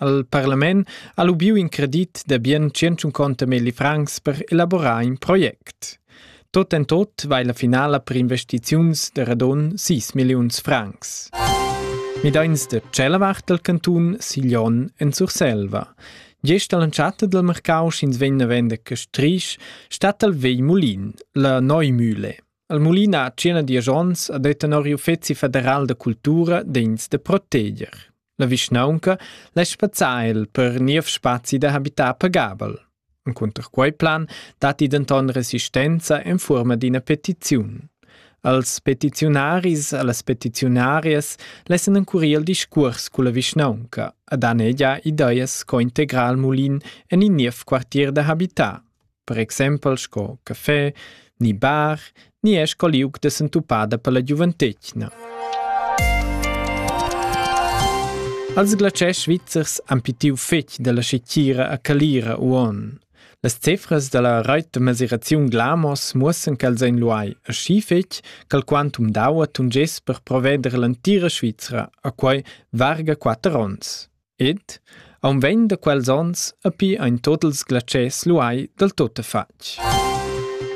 Al parlament ha lubiu in credit da bien 150 milli francs per elaborar in project. Tot en tot vai la finala per investiziuns de radon 6 milliuns francs. Midains de tschella vart del cantun Siglion en Surselva. Gest all'entschatta del mercau sch'ins vegn a vender Castrisch, stat al vei Mulin, la Neumühle. Al Mulin ha cena dies ons a det tenor il Uffezi federal da cultura d'ins de proteger. La vischnaunca lasch spazzar el per niev spazi da habitar pagabel. Encunter quei plan datti denton resistenza en fuorma d'ina petiziun. Als petiziunaris e las petiziunarias lessen encurir il discuors culla vischnaunca a danegia ideas co integrar il mulin en in niev quartier da habitar. per exempel sco café ni bar ni è sco liug da sentupada per la giuventetgna. Els glatschers svizzers han pitiu fetg dalla scetira a Calira uon. Las cefras dalla reit da mesiraziun Glamos muossan ch'els ein luai aschi fetg ch'al quantum d'aua tungess per proveder l'entira Svizra a quei varga quatter onns. Ed aunc vegn da quels onns a pi ein tot ils glatschers luai dal tuttafatg.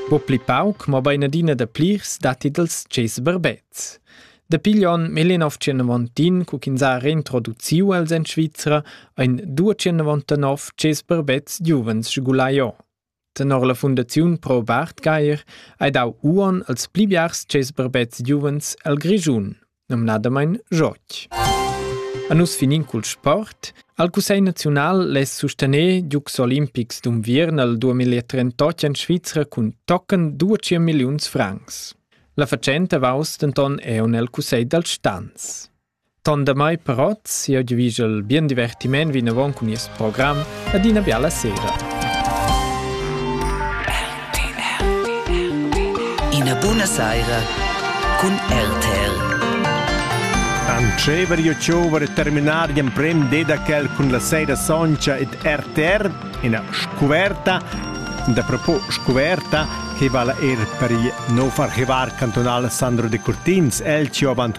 Po pli pauc, mobein adina da plirs datti dals tschess berbets. Dapi gli onn 1991, cu ch'ins ha reintroduciu els en Svizra, ein 299 tschess berbets giuvens sgulai o. Tenor la fundaziun Pro Bartgaier ei dau uonn als pli biars tschess barbets giuvens el Grischun, numnadamein Joch. A nus finin cul sport. Al Cussegl naziunal less sustener giugs olimpics d'unviern al 2038 en Svizra cun tochen 200 milliuns francs. La fatschenta vaus denton eun el Cussegl dal Stans. Ton damai però sieu giuvischel bien divertiment vinavon cun nies program ad ina biala sera. Ina buna saira cun RTL. Antschever io chiover terminar gli emprem dedacel cun la sera soncha ed RTR, ina scuverta, da propos scuverta, che vala er per il nov archivar cantonal Sandro de Curtins, el ci avant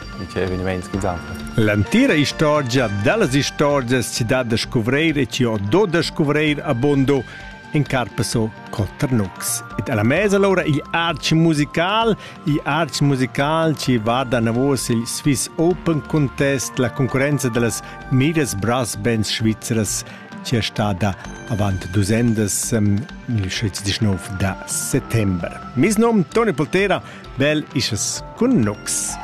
L'entira istorgia dallas istorgias si dat da scuvreir e chi ho do da scuvreir abundo in carpaso Cotternux. Ed alla mesa allora il arch musical, il arch musical ci va da navos il Swiss Open Contest, la concorrenza dallas Midas Brass Bands svizzeras ci è stada avant dusendas um, il 19 da settembre. Mis nom Toni Poltera, bel isches cun Nux.